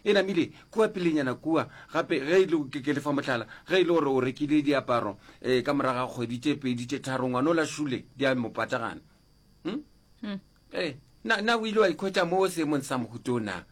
E namile kua pelenyana kua, gape ge e le ke, ke le fa mohlala, ge e le gore o rekile diaparo eh, ka morago ga kgwedi tše pedi tše tharo, ngwana o la šule, di a mo patagana. Hm? Hm. Eh, na, na o ile wa ikhwetša mo seemong sa mohuto o na?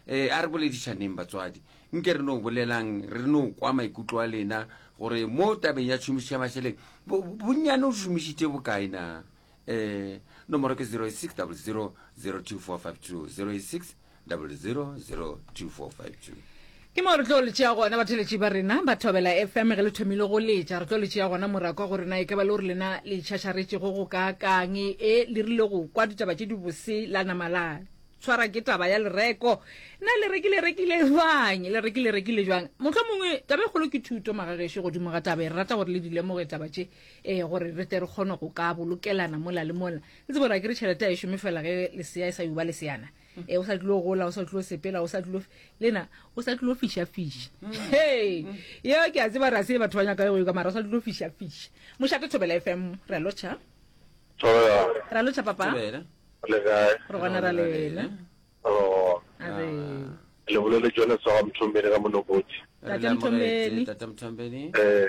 Eh, a re boledišaneng batswadi. Nke re no bolelang, re no kwa maikutlo a lena, gore mo tabeng ya tšhomišo ya mašeleng, bo, bonnyane o šomišitše bokae na? Eh, nomoro ke 08600024520, 086. 000245 Ke mo re tlo le tšea gona batheletši ba rena ba Thobela FM ge le thomile go letša. Re tlo le tšea gona morago ga gore na e ka ba le gore lena le itšhašaretšego go kaakang e le rile go kwa ditaba tše dibose la nama la tshwara ke taba ya lereko. Na le rekilerekile jwang? Le rekilerekile jwang? Mohlomongwe taba e kgolo ke thuto magagešo godimo ga taba e. Re rata gore le di lemoge taba tše eh, gore re tle re kgone go ka bolokelana mola le mola. Le tsebo gore a ke re tšhelete a e šome fela ge lesea e sa yo ba leseana. E, o sa tlilo gola, o sa tlilo sepela, o sa tlilo f- le na, o sa tlilo fiša-fiša. Hei! Yeo ke a tseba ra se batho ba nyaka go yo ka mara o sa tlilo fiša-fiša. Mošate Thobela FM, re a lotšha. Thobela, Re a lotšha papa. Thobela. le kae? Re gona ra le wena. Oh, A re, le bolele Jonas wa ga Mthombeni ka Monokoti. Re Tata le amogetse, Mthombeni. Tata Mthombeni. Eh,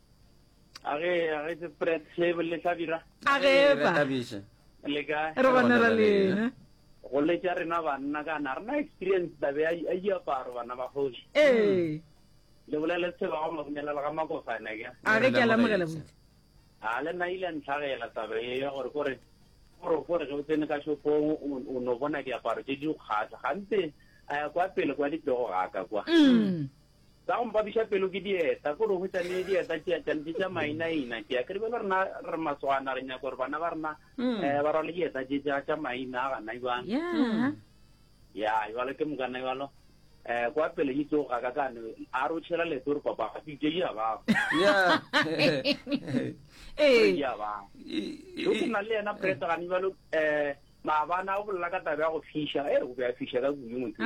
a ge a ge se pret le le hlabira a ge ba thabise le ka re bona ra lena go le tša rena banna kana re na experience da be a diaparo bana ba hosi ee le bolele se ba go mabunyela le ga makofana ke a ge ke la mogela botse a le na ile ntlhagela taba e ya gore gore gore gore ge o tsene ka shopong o no bona diaparo tše di kgatlha gante a ya kwa pele kwa dipego ga ka kwa mm. Sa go mpabiša pelo ke dieta, ke gore hwetša ne dieta tšea tšane tše tša mainaina tšea. Ke re bjale rena re Maswana re nyaka gore bana ba rena um ba rwale dieta tše tša tša maina a gana jwang. Yeah. Ya jwale ke mokana jwalo um kwa pele ke tsoga ka kano a re o tšhela leto gore papa ga pitše ya bago Yeah. Ee. ya bago so ke na le yena preta gane jwalo um Maabana o bolela ka taba ya go fiša. Ee, o be a fiša ka kudu motho.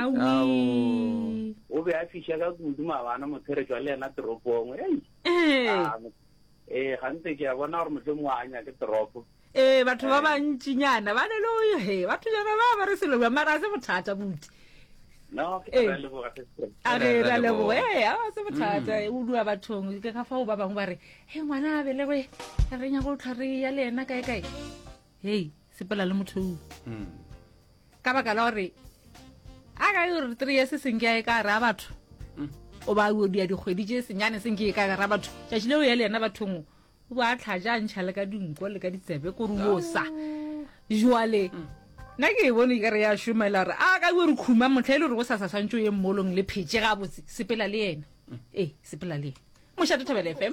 O be a fiša ka kudu maabana motho re tšwa le yena toropong. Ei. Ee, gante ke a bona gore motho mongwe a anya ke toropo. Ee, batho ba bantsinyana ba le loyo he. Batho jana ba ba re selo ba mara se bothata buti. No, ke ra le boga se. A re ra le boga. Ee, a se bothata. O dua bathong ke ga fa o ba bangwe ba re, "He ngwana a belegwe, re nya go tlhwa re ya le yena kae kae." hei sepela le motho o hmm. ka baka la gore a ka yo re three se seng ke a e ka ra batho hmm. o ba o dia dikgwedi je senyane seng ke e ka ra batho tšatši leo ya le yena bathong o bo a tlhaja a ntšha le ka dinko le ka ditsebe ko ruosa joale hmm. nna ke e bone kare ya šomela gore a ka yo re khuma motlha e le gore o sa sa swantse o ye mmolong le phetse gabotse sepela le yena ee sepela le yena mošate thabela fm